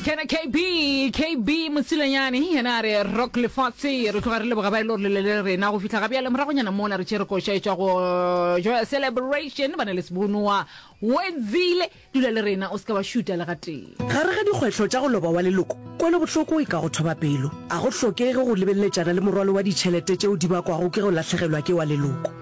kena kb kb mosilanyane yena a re rock lefatshe re tloga re leboga ba e le gore lele le rena go fitlha gabjale moragonyana mona re tšere koša e tswa go joya celebration ba ne le sebonowa wedzile dula le rena o se ka wa šuta le gatee gare ga dikgwetlho tša go loba wa leloko kwelobohloko e ka go thoba pelo a go hlokege go lebeleletšana le morwalo wa ditšhelete tšeo di bakwago ke go lahlegelwa ke wa leloko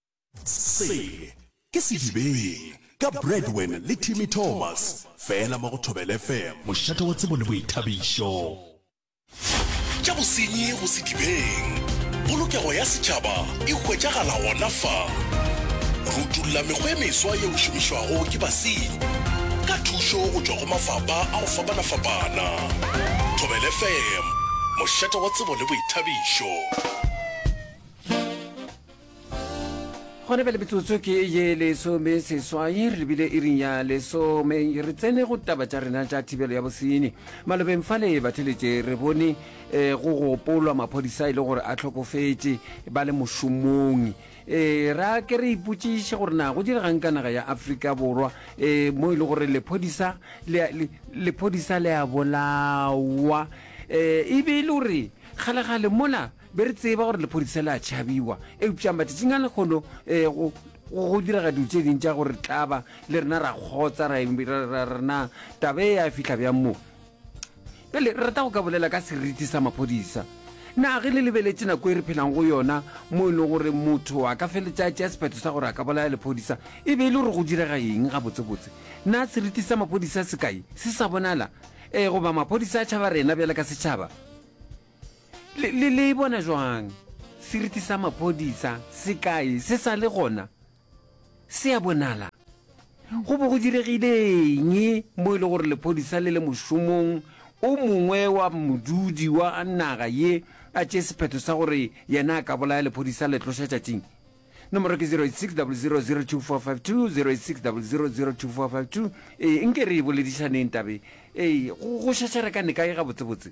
Se ke Sedibeng ka Bradwen le Timmy Thomas, fela mo go Thobela FM. Mošate wa tsebo le boithabišo. Tša bosenyi go Sedibeng. Polokego ya setšhaba e hwetšagala gona fa. Re utolla mekgwa e meswa yeo šomišwago ke basenyi ka thušo go tšwa go mafapha a go fapana-fapana. Thobela FM, mošate wa tsebo le boithabišo. gone bjale metsotso ke ye lesome seswai re lebile e ring ya lesome re tsene go taba tša rena tša thibelo ya bosenyi malobeng fa le batheletše re bone um go gopolwa maphodisa e le gore a tlhokofetše ba le mošomong um eh, ra ke re ipotsiše gore na go diregang ka naga ya aforika borwa um mo e le gore lephodisa le a bolawa um e be e le gore kgalegale mola be re tseba gore lephodisa le a tšhabiwa eupša matšatšing a lekgono um go diraga dilo tše ding tša gore tlaba le rena ra kgotsa rena taba e ya fitlha bjang mo pele re rata go ka bolela ka seriti sa maphodisa na ge le lebeletše nako e re phelang go yona mo e leng gore motho a ka feletša tša sephetho sa gore a ka bolaya lephodisa e be e le gore go direga eng gabotsebotse na seriti sa maphodisa se kae se sa bonala um goba maphodisa a tšhaba rena bjale ka setšhaba Le, le, le e bona jwang seriti sa maphodisa se kae se sa le gona se a bonala go bo go diregile eng mo e le gore lephodisa le le mošomong o mongwe wa modudi wa naga ye a tše sephetho sa gore yena a ka bolaya lephodisa le tloša tšatšing nomoro ke 0860002452 ee nke re e boledišaneng tabe ee go šašare ka neka e gabotsebotse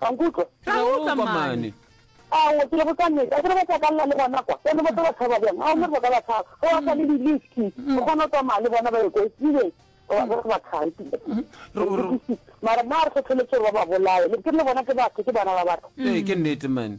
Ka nkutlwa? Ra go utlwa mane. Ao, ke lego ka nnete. A ke re ba tla ka lla le gona kwa? Bjale ba tla ba tshaba bjang? Ao, mmere ba ka ba tshaba. Ge ba sa le di-liski, o kgona go tsamaya le bona ba ye ko Sweden. Ba re ba thabi. Mara nna a re kgetholotshe gore ba ba bolaye. Ke le bona ke batho, ke bana ba batho. Ee, ke nnete mane.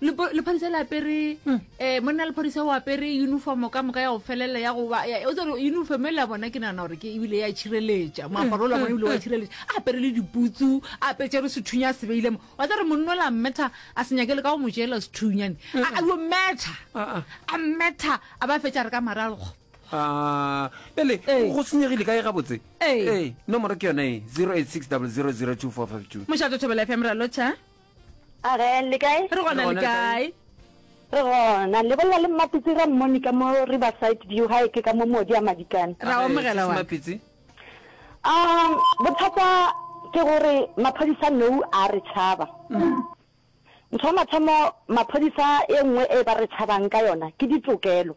lephodisa le apere um monna lephodisa o apere uniform ka moka ya go felela ya go tsere uniform e la bona ke nagana gore ke ebile ya tšhireletša moaparo o la bona ebile wa tšhireletša a apere le diputsu a apetse re sethunya a sebeile mo wa tsere monno la mmetha a se nyakele ka go mo jela sethunyane a yo metha a mmetha a ba fetša re ka maralgo ele go senyegile ka e gabotse nomoro ke yone e zero eight six double zero zero two four five two mošato thobela fm ra lotšha A re le kae? Re gona le kae? Re gona. Le bolela le Mmapitsi ra mmoni ka mo Riverside View ha eke ka mo modi a madikane. Ra omogela wa. Mmapitsi. Um bothata ke gore maphodisa nou a re tšhaba. Ntho ya mathomo maphodisa e nngwe e ba re tšhabang ka yona ke ditokelo.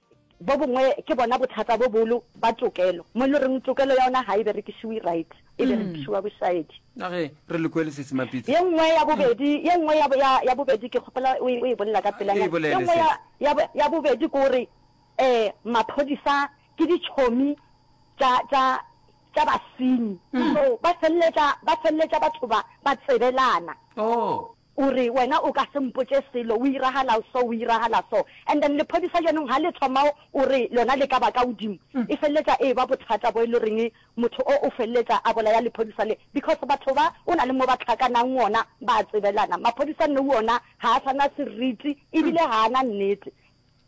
Bo bongwe ke bona bothata bo bolo ba tokelo, mo e le reng tokelo ya ona ga e berekišiwe right, e berekišiwa bošaedi. A ge re le kwele se se mapitsa. Ye nngwe ya bobedi, ye nngwe ya, ya, ya bobedi, ke kgopola o e, o e bolela ka pelanyana. E bolele, Ye nngwe ya, sis. ya, ya bobedi ke gore, um, maphodisa ke ditšhomi tša, tša, tša basenyi. So, ba feleletša, ba feleletša batho ba, ba tsebelana. Oh. O re, Wena o ka se mpotše selo, o iragala so, o iragala so. And then lephodisa jaanong ha le thoma o re lona le ka ba ka godimo, e feleletša e eba bothata bo e le goreng motho o o feleletša a bolaya lephodisa le, because batho ba o na le mo ba tlhakanang gona ba a tsebelana. Maphodisa nou ona ga a sa na seriti ebile ga a na nnete.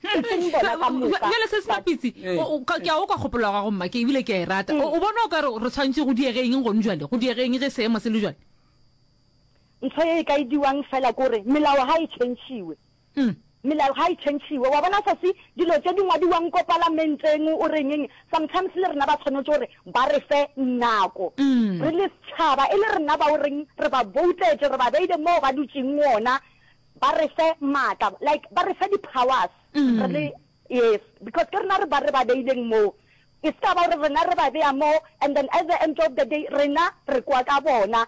E seng bona ka moka, Bjale se sena but. pitsi, o- o- ka- ke a okwa kgopolo ya gago mma, ke ebile ke a e rata. O o bona o ka re re tshwanetse go diege eng gone bjale, go diege eng ge seemo se le bjale? Ntho ye e ka e diwang fela kore melao ga e tšhentšhiwe. Melao ga e tšhentšhiwe. Wa bona sesi, dilo tše di ngwadiwang ko palamenteng o renyeng, sometimes le rena ba tshwanetše gore ba re fe nako re le setšhaba, e le rena ba o reng re ba boutetše, re ba beile moo ba dutšeng gona, ba re fe maatla, like ba re fe di-powers re le, yes, because ke rena re ba re ba beileng moo. E se ka ba gore rena re ba bea moo and then at the end of the day rena re kwa ka bona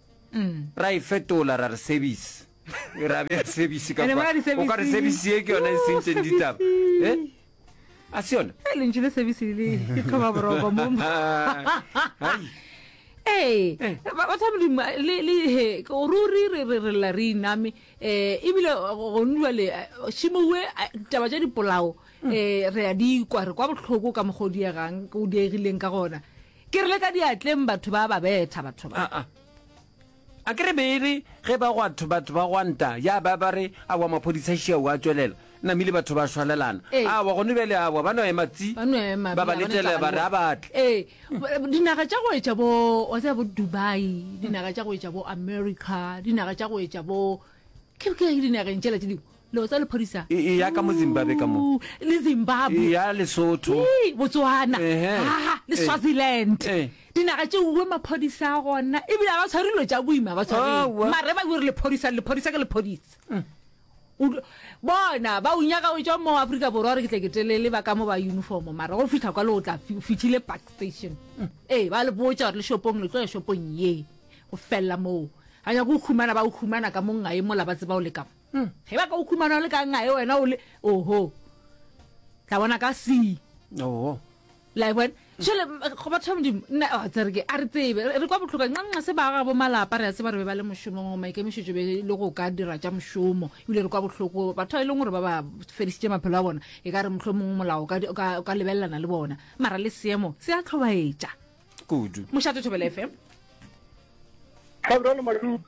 ra e fetola ra re service ra bea service ka kwa o ka re service ye ke yona e sentseng ditaba eh a se yona e lentši le service le ke tlhoba boroko mo ee eh. batho ba modimo le ruri re re re lla re iname um eh, ebile gone jale eh, šimowe taba tša dipolao um re ya di kwa re kwa botlhoko ka mokgwa o diegang o diegileng ka gona Ke re le ka diatleng batho ba ba betha batho ba. A-a. A ke re beere ge ba gwatho batho ba gwanta ya ba ba re a wa maphodisa šia wa tšwelela namile batho ba shwalelana. Ee. A wa gone bjale a wa ba no ema tsi. Ba no ema ba ba letele ba re a batle. Ee. Dinaga tša go etša bo wa tsaya bo Dubai, dinaga tša go etša bo America, dinaga tša go etša bo ke ke dinageng tšela tše dingwe. Leo tsa lephodisa. E, eya ka mo Zimbabwe ka mo. Ooh, le Zimbabwe. Eya Lesotho. Ee, Botswana. Ehe. Haa, le Eh. Swaziland. Eh. Dinaga tše uwe maphodisa a gona. Ebile a ba tshware dilo tša boima, ba tshwareng. Aowa. Mare ba gore lephodisa, le lephodisa ke lephodisa. O tlo- bona ba o nyaka o tšwa mo afrika borwa gore ke tle ke telele ba ka mo ba uniform mara go fitlha kwa le o tla fi- o fitlhile park station ee ba le botsa gore le shopong le tlo ya shopong ye go felela moo ga nyako o humana ba o humana ka mongae mola ba tseba o le kamo Hmm, ge ba ka o khumana o le ka ngae wena o le oho tla bona ka se oo like wena jale go batho ba modimo nna a tsere ke a re tsebe re re kwa botlhoka nqanqa se ba ga bo malapa re a tseba re be ba le mošomong maikemišetšo be le go ka dira tša mošomo ebile re kwa botlhoko batho ba e leng gore ba ba fedisitše maphelo a bona e ka re motlho mongwe molao o ka di- o ka o ka lebelelana le bona mara le seemo se a tlhobaetša kudu mošate thobela fm Gabriel Maluka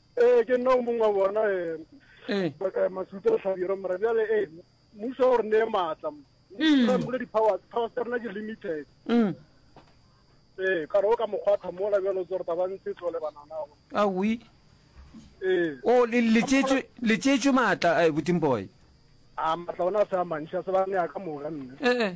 Ee, ke nna o mongwe wa bona eh, eh, Masuta Tlhabiro mara bjale e eh, mmuso o re neye maatla mm. ra mole di-powers powers tsa rena ke limited mm. ee kare o ka mokgwatha mola bjalo tse gore taba ntse tlole bananago awi ee o letsetswe maatla a boting boy a maatla ona a se a mantšha se ba nea ka moka nne ee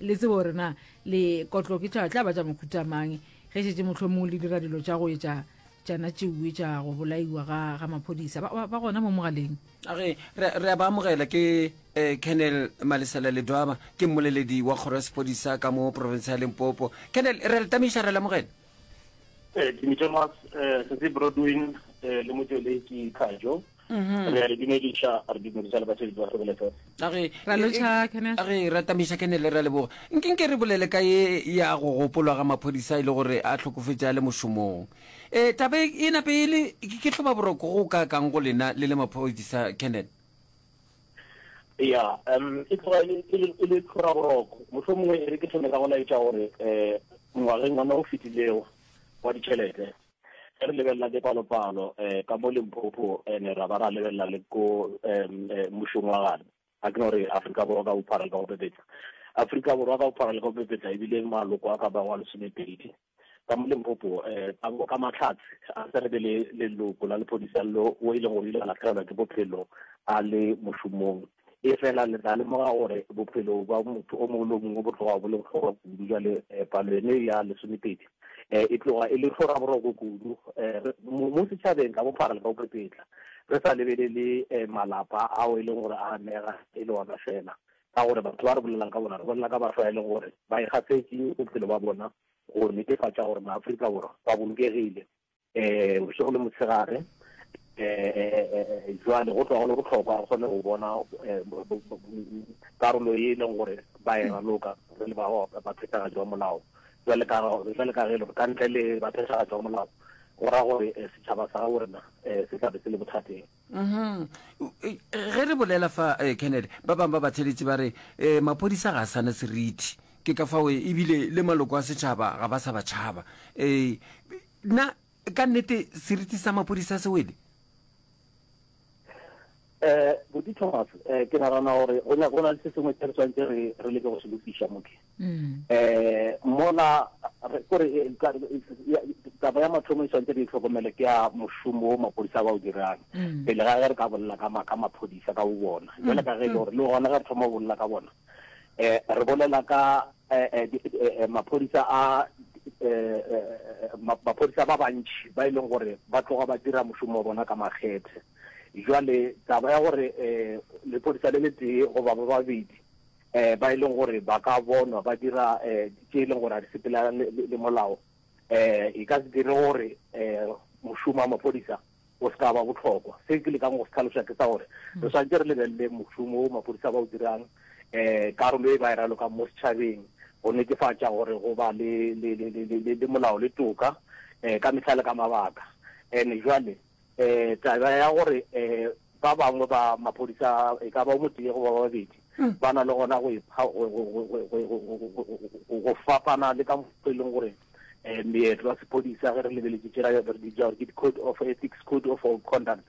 le tsebo gore na lekotlo ke tla tla ba tša mokhuta mang ge šetse motlho mongwe le dira dilo tša go etša tšana tšeue tša go bolaiwa ga ga maphodisa ba- ba ba gona mo mogaleng a re re- re a ba amogela ke um kennel malesela ledwaba ke mmoleledi wa kgoro ya sepodisa ka mo porofense ya lempopo kennel re a le tamisa re a le amogela Eh, ke Mitšemas, eh, se se Broadwin, eh, le motsweledi Kajo. Mm-hmm. re a le dumediša re dumediša le basebetsi ba sebele fela age e ratamisa kene le ra leboga nke nke re bolele ka ye ya go gopolwa ga maphodisa e le gore a tlhokofetša le mošomong um taba e, e nape e le ke tlhoba boroko go ka kang go lena le le maphodisa kenneth ya um e tloga e, e, e le tlhora boroko motlho mongwe e re ke tlhome ka go laetša gore um ngwageng ona o fetilego wa ditšhelete ge re lebelela dipalopalo um ka mo Limpopo and-e ra ba ra lebelela le ko um mmušong wa gane ga ke no re Afrika Borwa ka bophara le ka go pepetla Afrika Borwa ka bophara le ka go pepetla ebile maloko a ka ba wa lesomepedi ka mo Limpopo um ka Mahlatse a tse re be le leloko la lephodisa lo o e leng gore o ile a latlhegelwa ke bophelo a le mošomong Efela le tla lemoga gore bophelo bja motho o mongwe le o mongwe bo tloga bo le bohlokwa kudu. Bjale palo yene ya lesomepedi e tloga e le hloraboroko kudu mo setšhabeng ka bophara le ka bopepetla, re sa lebelele malapa ao e leng gore a amega e le ona feela. Ka gore batho ba re bolelelang ka bona, re bolela ka batho ba e leng gore ba ikgafetše bophelo bja bona go netefatša gore maAfrika Borwa ba bolokegile. eh bošego le motshegare eh jwale go tloga go le botlhokwa go kgone go bona eh, karolo e leng gore ba e raloka re le baphethagatši ba molao jwale ka ge le ka ntle le baphethagatši ba molao go ra gore eh, setšhaba sa ga borena eh, se tlabe se le bothateng Mhm. U- e, ge re bolela fa eh, kennedy ba bangwe ba batheletši ba re um maphodisa ga a sana seriti ke ka fao eh, ebile le maloko a setšhaba ga ba sa ba tšhaba um na ka nnete seriti sa maphodisa se wele Eh, Boti Thomas, eh, ke nagana gore go na- go na le se sengwe se re tshwanetse re re leke go se lokiša moke. um mola kore taba ya mathomo e tshwanetse re itlhokomele ke ya mošomo o mapodisa ba o dirang pele ga ge re ka bolela ka maphodisa ka bo bona jale ka ge e le gore le gona ge re thoma go bolela ka bona um re bolela ka maphodisa a maphodisa ba bantšhi ba e leng gore ba tloga ba dira mošomo wa bona ka makgethe jale taba ya gore lepodisa le le tee goba ba babedi um ba e leng gore ba ka bonwa ba dira um tše e leng gore a di sepela le molao um e ka se dire gore um mošomo wa maphodisa o se ka ba botlhokwa se ke lekang go se tlhalosa ke sa gore hmm. re swantse re lebelele mošomo o maphodisa ba o dirang um karolo e ba e ralokang mo setšhabeng go netefatša gore go ba le molao le toka um ka metlha le ka mabaka and-e jwale eh taba ya gore eh ba bangwe ba maphodisa e ka ba mo tee go ba babedi mm. ba na le gona go ipha go fapana le ka motho e leng gore um meetlo wa sephodisa ge re lebeletse tsela ya gore ke code of ethics code of conduct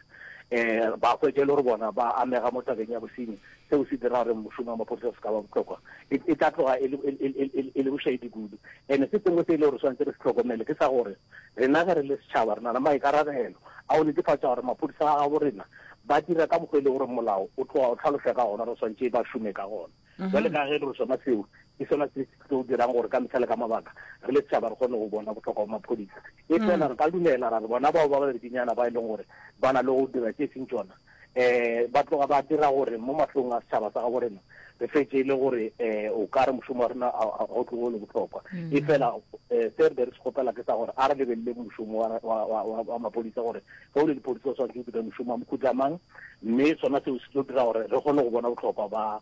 um ba kwetse e le gore bona ba amega mo tabeng ya bosenyi seo se dira gore mošomo wa maphodisa se ka ba botlhokwa e, e tla tloga e le bošaedi kudu and se sengwe se e le gore tshwanetse re se tlhokomele ke sa gore Rena ge re le setšhaba re na le maikarabelo a go netefatša gore maphodisa a gabo rena ba dira ka mokgwa e le gore molao o tloga o tlhalosa ka gona, re swantšhe ba šome ka gona. Bjale ka ge e le gore sona seo ke sona se se tlo dirang gore ka mehla le ka mabaka re le setšhaba re kgone go bona bohlokwa bwa maphodisa, efela re ka dumela ra re bona bao ba babedinyana ba e leng gore ba na le go dira tše e seng tšona, um ba tloga ba dira gore mo mahlong a setšhaba sa gabo rena re fetse e le gore um o ka re mošomo wa rena ga o tlogo le botlhokwa mm. e fela um se re be re se kgopela ke sa gore a re lebelele mošomo wa mapodisa gore ge o le dipodisa o tshwanetse o dire mošomo wa mokhutamang mme sona seo se tlo dira gore re kgone go bona botlhokwa ba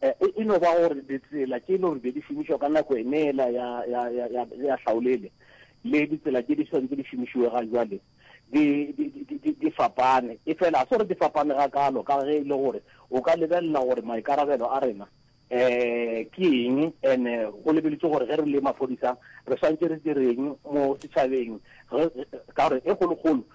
E, e no ba gore ditsela tše e le gore be di šomišwa ka nako eneela ya, ya, ya, ya, ya hlaolele le ditsela tše di swantse di šomišiwe ga jwale di, di, di, di, di fapane e fela a se gore di fapane ga kalo ka ge e le gore o ka lebelela gore maikarabelo a rena eh ke eng ene go lebeletse gore ge re le maphodisa re swantse re direng mo setšhabeng ka gore e kgolokgolo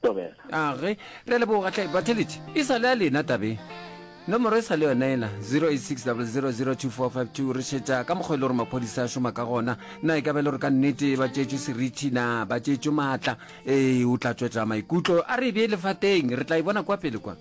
tobela. Age, re a leboga hle. Batheletši, e sa le a lena tabeng. Nomoro e sa le yona ena, 0860002452. Re šetša ka mokgwa e le gore maphodisa a šoma ka gona. Na e ka ba e le gore ka nnete ba tšetšwe seriti? Na ba tšetšwe maatla? Ee, o tla tšwetša maikutlo a re e be e le fa teng. Re tla e bona kwa pele kwa.